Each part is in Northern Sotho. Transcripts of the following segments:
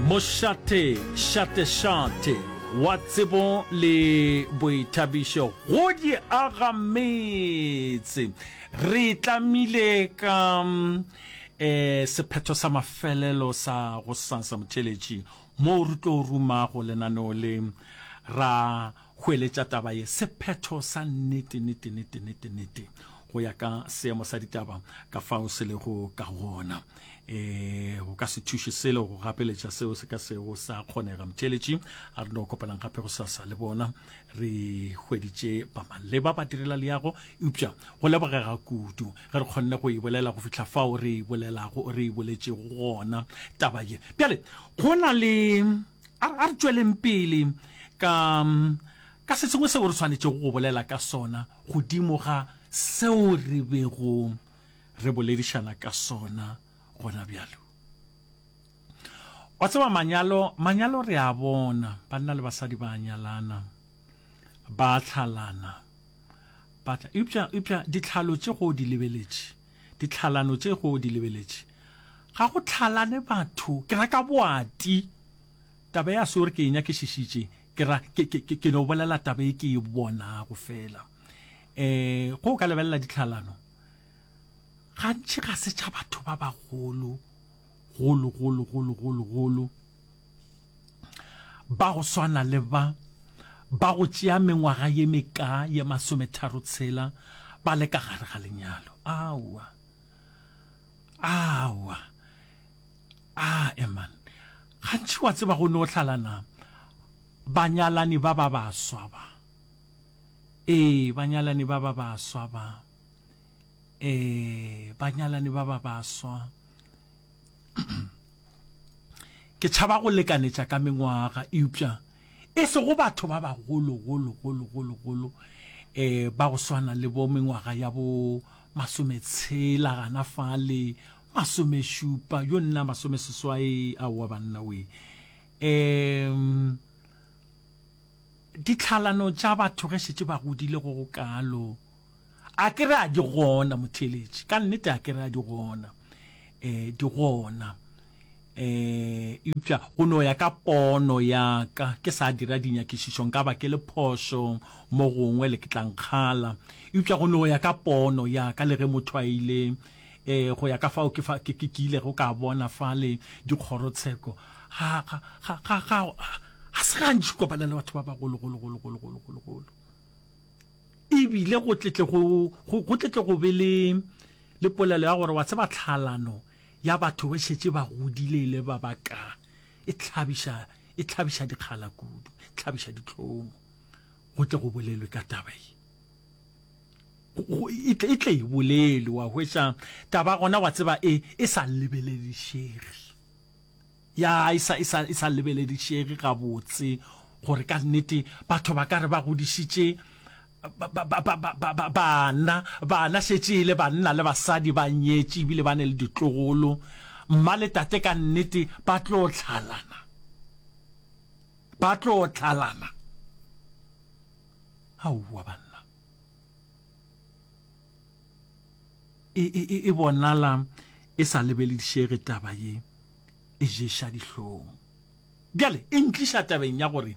Mošate, šatešate, wa tsebo le boithabišo go di aga metse. Re tlamile ka eh, sephetho sa mafelelo sa gosasa motšheletši moo re tlo rumago lenaneo le ra Goeletša taba ye, Sephetho sa nnete, nnete, nnete, nnete, nnete, go ya ka seemo sa ditaba ka fao se lego ka gona, e, go ka se thuše selo go gapeletša seo se ka sego sa kgonega. Mtheeletši, a re no kopanang gape gosasa le bona. Re hweditše ba maleba ba direla leago, eupša go lebogega kudu ge re kgonne go e bolela go fihla fao re e bolelago, re e boletšego gona taba ye. Bjale go na le. A re, a re tšweleng pele ka, ka se sengwe seo re swanetšego go bolela ka sona godimo ga seo re bego re boledišana ka sona gona bjalo. Wa tseba, manyalo, manyalo re a bona, banna le basadi ba a nyalana, ba a hlalana, ba tla, eupša, eupša ditlhalo tše go di lebeletše. Ditlhalano tše go di lebeletše. Ga go tlhalane batho, ke ra ka boati. Taba ya seo re ke e nyakišišitše, ke ra, ke, ke, ke, ke no bolela taba e ke e bonago fela. E, go ka lebelela ditlhalano, gantši ga se tša batho ba bagolo, golo, golo, golo, golo, golo. ba go swana le ba ba go tšea mengwaga ye meka ye masometharo tshela ba le ka gare ga lenyalo aowa aowa a eman gantši wa tseba go ne o hlalana banyalani ba ba baswa ba ee banyalani ba ba baswa ba e banyalani ba ba baswa ke tšhaba go lekanetša ka mengwaga eupša e sego batho ba bagolo golo golo golo golo um ba go swana le bo mengwaga ya bo masometshela gana fale masomešupa yo nna masomeseswai aowa banna we um ditlhalano tša batho ge šetse ba godile go go kalo A ke re a di gona, motheeletši? Ka nnete a ke re a di gona? E, di gona. E, eupša go no ya ka pono ya ka, ke sa dira dinyakišišo, nka ba ke le phošo mo gongwe le ke tla nkgala. Eupša go no ya ka pono ya ka, le ge motho a ile, e, go ya ka fao ke, fa, ke, ke, ke ilego ka bona fale dikgorotsheko, ga, ga, ga, ga, ga, ga se gantši kopana le batho ba bagolo, golo, golo, golo, golo, golo, golo. E bile go tletle go, go, go tletle go be le, le polelo ya gore, wa tseba, tlhaalano ya batho ba šetše ba godile e le ba ba ka, e tlhabiša, e tlhabiša dikgala kudu, e tlhabiša ditlhomo. Go tle go bolelwe ka taba ye. E tle, e tle e bolelwe, wa hwetša, taba gona, wa tseba, e, e sa lebeledišege. Ya e sa, e sa, e sa lebeledišege gabotse gore ka nnete batho ba ka re ba godišitše ba, ba, ba, ba, ba, ba, bana, bana šetše e le banna le basadi ba nyetše ebile ba ne le ditlogolo. Mma le tate ka nnete ba tlo tlhalana, ba tlo tlhalana. Aowa banna. e, e, e, e bonala e sa lebeledišege taba ye e ješa dihlong bjale e ntliša tabeng ya gore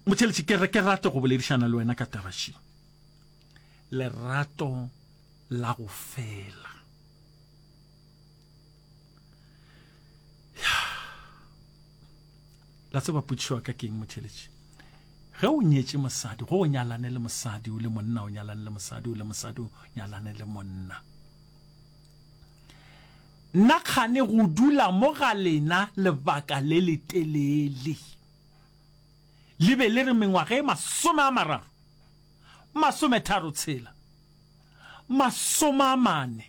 motheletši ke re ke rate go boledišana le wena ka taba še lerato la go fela ya la tseba putšiwa ka keng motheletši ge o nyetše mosadi go o nyalane le mosadi o le monna o nyalane le mosadi o le mosadi o nyalane le monna nna kgane go dula mo ga lena lebaka le le telele le be le re mengwaga e masome a mararo masome tharo tshela masome a mane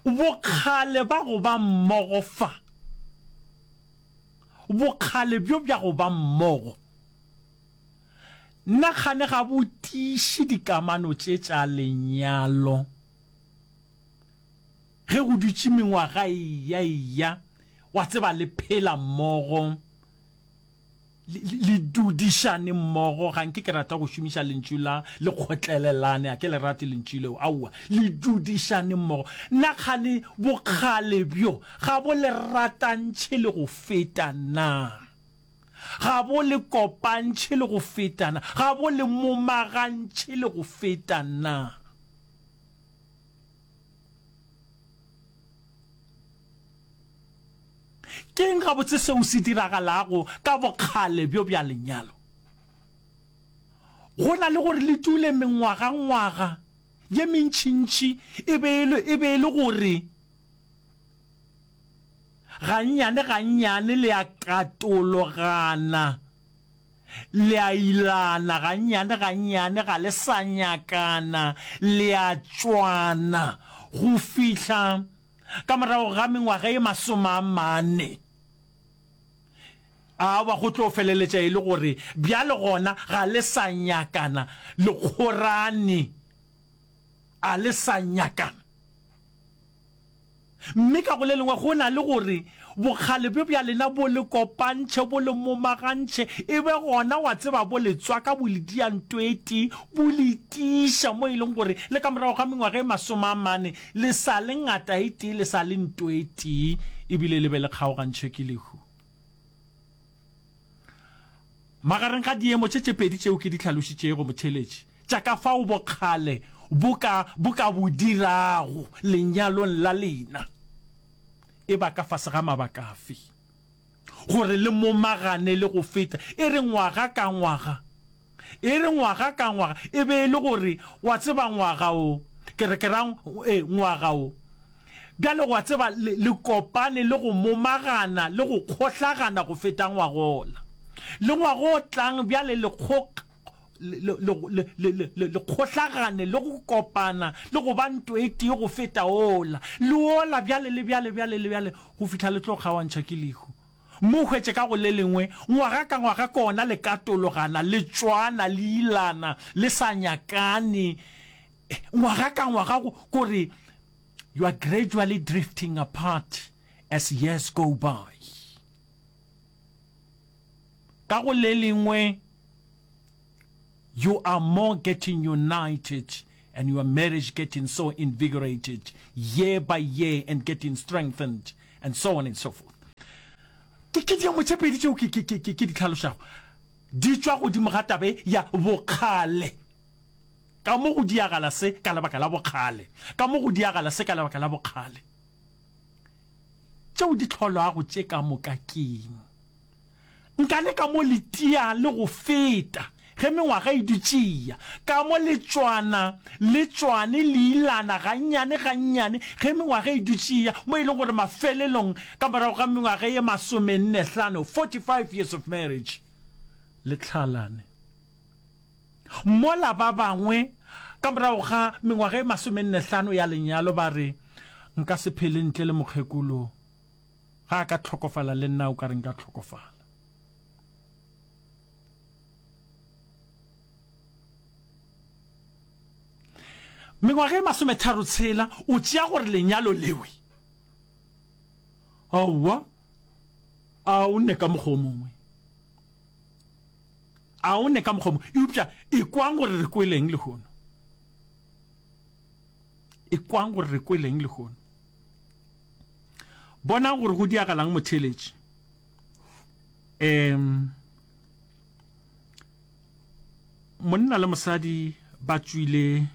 Bokgale ba go ba mmogo fa. Bokgale bjo bja go ba mmogo nna kgane ga bo tiiše dikamano tše tša lenyalo. Ge go dutše mengwaga e ya e ya, wa tseba le phela mmogo, le dudišane mmogo ga nke ke rata go šomiša lentšu la le kgotlelelane a ke le rate lentšu leo aowa le dudišane mmogo nna kgane bokgale bjo ga bo le ratantšhe le go feta na ga bo le kopantšhe le go feta na ga bo le momagantšhe le go feta na Ke eng gabotse seo se diragalago ka bokgale bjo bja lenyalo? Go na le gore le dule mengwagangwaga ye mentšintši e be e le gore gannyane-gannyane le a katologana. Le a ilana gannyane gannyane, ga le sa nyakana, le a tšwana. Go fihla ka morago ga mengwaga ye masome a mane, aowa, go tlo feleletša e le gore bjale gona ga le sa nyakana, lekgorane a le sa nyakana. Mme ka go le lengwe go na le gore bokgale bjo bja lena bo le kopantšhe, bo le momagantšhe, e be gona, wa tseba, bo le tswa ka bolediantoetee, bo le tiiša mo e leng gore le ka morago ga mengwaga e masome a mane le sa le ngataetee, le sa le ntoetee, e bile le be le kgaogantšhwe ke lehu. Magareng ga diemo tše tše pedi tšeo ke di hlalošitšego, motheeletši, tša ka fao bokgale bo ka, bo ka bo dirago lenyalong la lena, e ba ka fase ga mabaka afe gore le momagane le go feta e re ngwaga ka ngwaga? E re ngwaga ka ngwaga, e be e le gore, wa tseba, ngwaga wo, ke re, ke ra, ee, ngwaga wo. Bjale, wa tseba, le, le kopane le go momagana le go kgohlagana go feta ngwaga wola. Le ngwaga o tlang, bjale, le kgok-, le, le, le, le, le, le, le, le kgohlagane le go kopana le go ba nto e tee go feta wola, le wola, bjale, le bjale, bjale, le bjale, go fihla le tlo kgaoantšha ke lehu. Mo hwetše ka go le lengwe, ngwaga ka ngwaga kona le katologana, le tšwana, le ilana, le sa nyakane, ngwaga ka ngwaga, go, go re, You are gradually drifting apart as years go by. Ka go le lengwe, You are more getting united and your marriage getting so invigorated year by year and getting strengthened and so on and so forth. Ke ke diamo tše pedi tšeo ke ke ke ke di tlhalošago di tšwa godimo ga tabe ya bokgale. Ka mo go diagala se ka lebaka la bokgale. Ka mo go diagala se ka lebaka la bokgale. Tšeo di tlholwago tše ka moka keng? Nka le ka mo le tia le go feta, ge mengwaga e dutše e ya, ka mo le tšwana le tšwane le ilana gannyane gannyane, ge mengwaga e dutše e ya, mo e lego gore mafelelong ka morago ga mengwaga ye masomenne-hlano, 45 years of marriage, le hlalane. Mola ba bangwe ka morago ga mengwaga ye masomenne-hlano ya lenyalo ba re, Nka se phele ntle le mokgekolo Ga a ka hlokofala le nna o ka re nka hlokofala. Mengwaga e masometharo tshela o tšea gore lenyalo lewe. Aowa, a o nne ka mokgwa o mongwe. A o nne ka mokgwa o mongwe. Eupša e kwang gore re kweleng lehono. E kwang gore re kweleng lehono. Bonang gore go diagalang motheeletši. Um, monna le mosadi ba tswile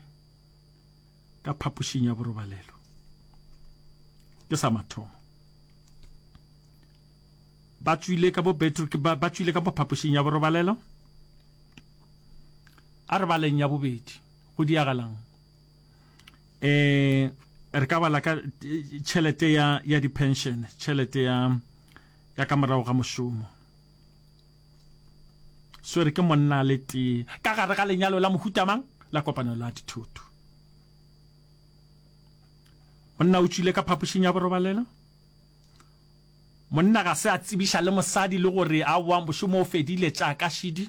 ka phapošing ya borobalelo ke sa mathomo ba tswile ka bobetro ba tswile ka phapošing ya borobalelo a re baleng ya bobedi go diagalang eh re ka bala ka tšhelete ya ya di pension tšhelete ya ya ka morago ga mošomo swere ke monna le tee ka gare ga lenyalo la mohutamang la kopano la dithoto monna o tšwile ka phapošing ya borobalela monna ga se a tsebiša le mosadi le gore a wa mošomo o fedile tša ka šidi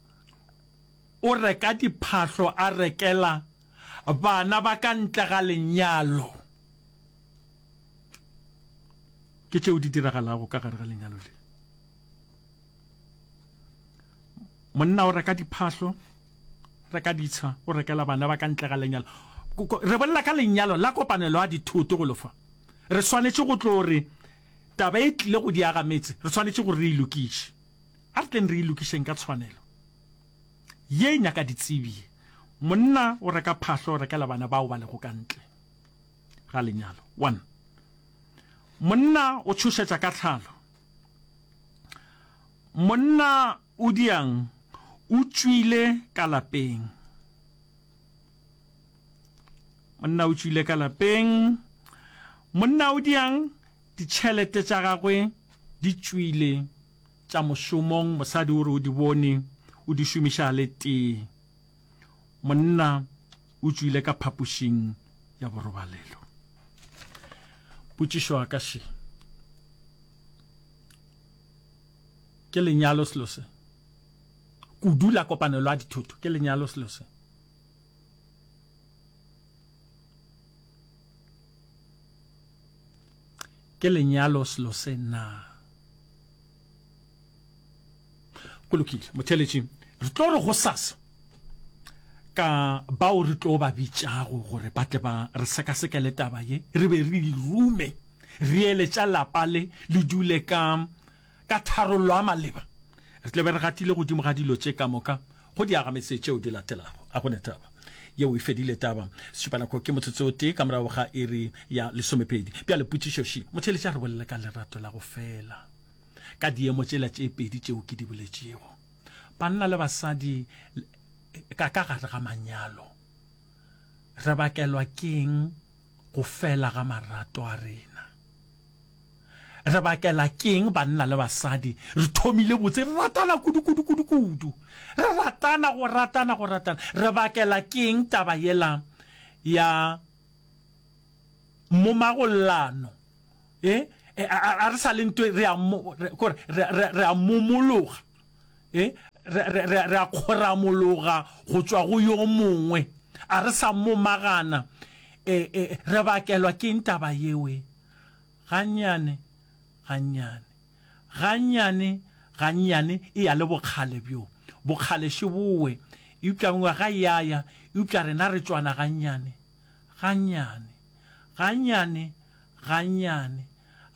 O reka diphahlo a rekela bana ba ka ntle ga lenyalo. Ke tšeo di diragalago ka gare ga lenyalo le. Monna o reka diphahlo, reka ditsha, o rekela bana ba ka ntle ga lenyalo. re bolela ka lenyalo la kopanelo ya dithoto go lofa re swanetše go tlo re taba e tlile go diaga metse re swanetše gore re ilokiše A re tleng re e lokišeng ka tshwanelo. Ye e nyaka ditsebi ye. Monna o reka phahlo, o rekela bana bao ba lego ka ntle ga lenyalo. One. Monna o tšhošetša ka tlhalo. Monna o diang o tšwile ka lapeng. Monna o tšwile ka lapeng. Monna o diang ditšhelete tša gagwe di tšwile Tša mošomong, mosadi o re o di bone, o di šomiša a le tee. Monna o tšwile ka phapošing ya borobalelo. Potšišo ya ka še, ke lenyalo selo se? Kudu la kopanelo ya dithoto, ke lenyalo selo se? Ke lenyalo selo se na? Go lokile, motheletši. Re tlo re go sasa ka bao re tlo ba bitšago gore ba tle ba re sekasekele taba ye, re be re irume re ele tša lapa le le dule ka Ka tharollo a maleba, re tlo be re gatile godimo ga dilo tše ka moka go diagametse tšeo di latelago. A go ne taba yeo e fedile? Taba! Setšupanako ke motsotso o tee ka morago ga iri ya lesomepedi. Bjale potšišo še. Motheeletši a re bolele ka lerato la go fela ka diemo tšela tše pedi tšeo ke di boletšego, banna le basadi ka ka gare ga manyalo. Re bakelwa ke'ng? go fela ga marato a rena. Re bakela keng banna le basadi? Re thomile botse, re ratana kudu kudu kudu kudu. Re ratana go ratana go ratana. Re bakela keng taba yela ya momagollano? Eh, eh, a re sa le ntwe re a mo, re, kore, re, re, re a momologa. e re, re, re, re a kgoramologa go tšwa go yo mongwe a re sa momagana e, e, re bakelwa ke ntaba yeo e gannyane gannyane gannyane gannyane e ya le bokgale bjo bokgale še bowe eupša ngwaga yaya eupša rena re tšwana gannyane gannyane, gannyane, gannyane,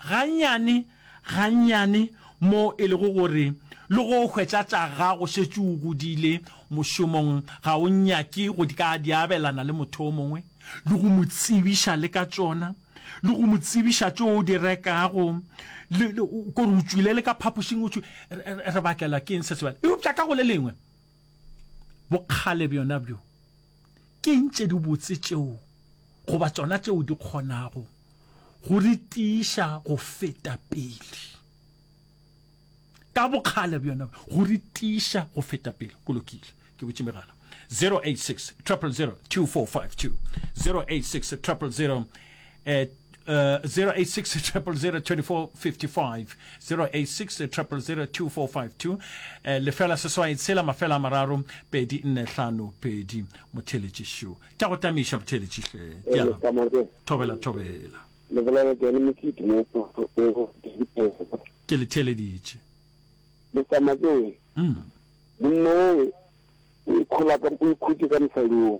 gannyane, gannyane, moo e lego gore le go hwetša tša gago šetše o godile mošomong ga o nyake go ka di abelana le motho yo mongwe le go mo tsebiša le ka tšona, le go mo tsebiša tšeo o di rekago, le, le, kore o tšwile le ka phapošing o tšwile, re, re, re bakela ke eng se sebjale? Eupša ka go le lengwe. Bokgale bjona bjo ke eng tše di botse tšeo goba tsona tšeo di kgonago go re tiiša go feta pele? Ka bokgale bjona go re tiiša go feta pele. Go lokile, ke botše megala 086 000 2452 086 000 eh, Uh, 086 086 eh, lefela seswai tshela mafela a mararo pedi nne hlano pedi motheletši šo tša go tamiša motheletši hle thobela thobela ke le theleditše lesamakee mm. monno o ikhutše ka mosading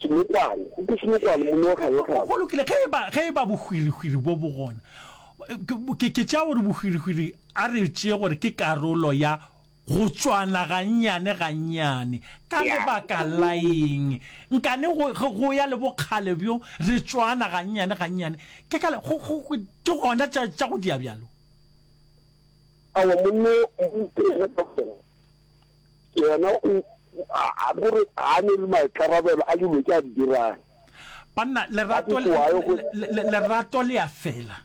Senokwane, go ke senokwane, monna wa kganyakganya. Go lokile, ge eba, ge eba bohwirihwiri bjo bo gona, ke, ke tšea gore bohwirihwiri, a re e tšee gore ke karolo ya go tšwana gannyane, gannyane. Ka lebaka la eng? Nkane go, ge go ya le bokgale bjo, re tšwana gannyane, gannyane. Ke ka le, go, go, ke gona tša, tša go dia bjalo. Aowa, monna yo, monna yo, ke yena taba. Yena o, a, a, gore ga a ne le maikarabelo a dilo tše a di dirang. Banna, lerato, lerato le a fela.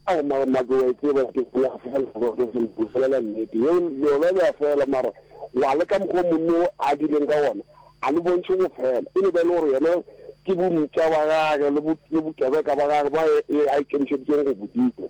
Ao, mara make wa e tseba ke le a fela, ke bolela nnete. Yeo, lona le a fela, mara wa le ka mokgwa monno a dileng ka ona, a le bontšhe go fela. E no ba e le gore yena ke bontša ba gage le bokebeka ba gage ba e a ikemišeditseng go bo dira.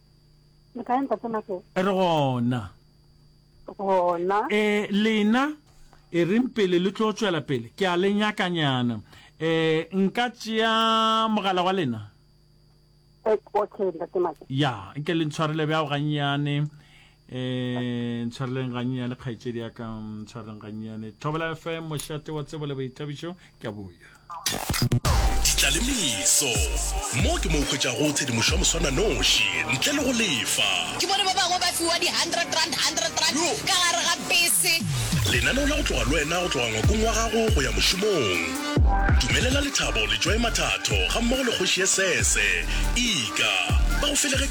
Le kae ntate Makela? Re gona. Gona. E lena e reng pele le tlo tšwela pele ke a le nyakanyana. E nka tšea mogala wa lena. Okay ntate Makela. Ya, nke le ntshwarele bja o gannyane. um tshwareleng ganyenyane kgaetšedi ya ka mm, tshwareleng ganyenyane thobela fm mošate wa tsebo le boithabišo ke a boya ditlalemiso mo ke mo hwetšago tshedimošo ya moswana noši ntle le go lefa ke bone ba bangwe ba fiwa di-hundred rand hundred rand ka gare ga bese lenaneo la go tloga le wena go tloga ngwakong wa gago go ya mošomong dumelela lethabo le joy mathatho ga mmogo le kgoši ye sese ika ba go felegetše